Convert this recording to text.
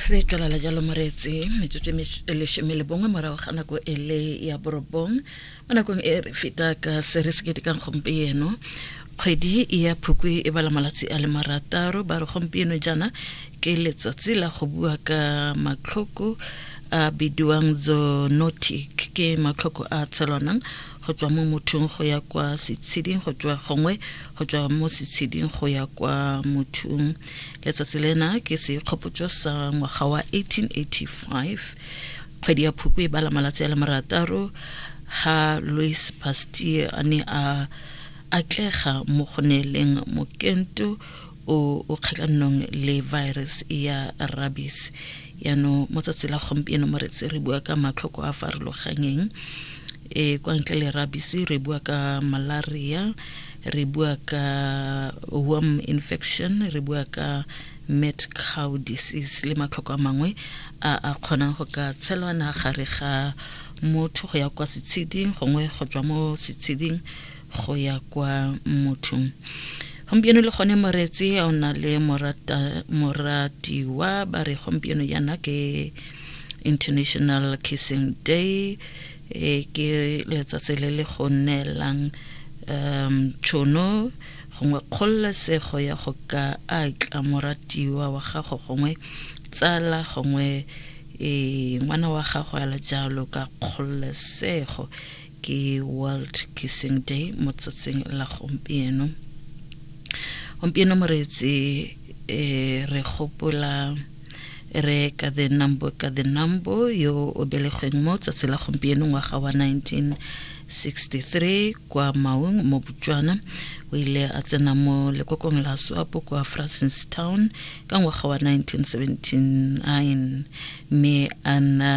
re tlala la jalo moreetse metsotso e leshome le bongwe morago ga nako e le ya borobong mo nakong e re feta ka se re se ketekang gompieno kgwedi ya phukwi e bala malatsi a le marataro ba re gompieno jaana ke letsatsi la go bua ka matlhoko a bidiwang zoonotic ke matlhoko a tshelwanang go tswa mo mothong go ya kwa setsheding go tswa gongwe go tswa mo setsheding go ya kwa mothung letsatsi lena ke sekgopotso sa ngwaga wa 1885 kgwedi ya phoko e bala malatsi a le marataro ha louis pasteur a ne a atlega mo go neeleng mokento o o kgatlhanong le virus ya rabies yaanong mo tsatsi la gompieno mo retse re bua ka matlhoko a farologanyeng e kwa ntle le rabies re bua ka malaria re bua ka worm infection re bua ka mad cow disease le matlhoko a mangwe a a kgonang go ka tshelwana gare ga motho go ya kwa setsheding gongwe go tswa mo setsheding go ya kwa mothong gompieno le gone moretse o na le moratiwa ba re gompieno yana ke international kissing day e ke letsatsi le le go neelang um tšhono gongwe kgololesego ya go ka atla moratiwa wa gago gongwe tsala gongwe e ngwana wa gago ya le jalo ka kgololesego ke world kissing day mo tsatsing la gompieno gompieno moreetsi eh, re gopola re ka the number ka the number yo o belegweng mo tsatsi la gompieno ngwaga wa 1963 kwa maung mo botswana o ile a tsena mo lekokong la swapo kwa francistown ka ngwaga wa 1979 mme a nna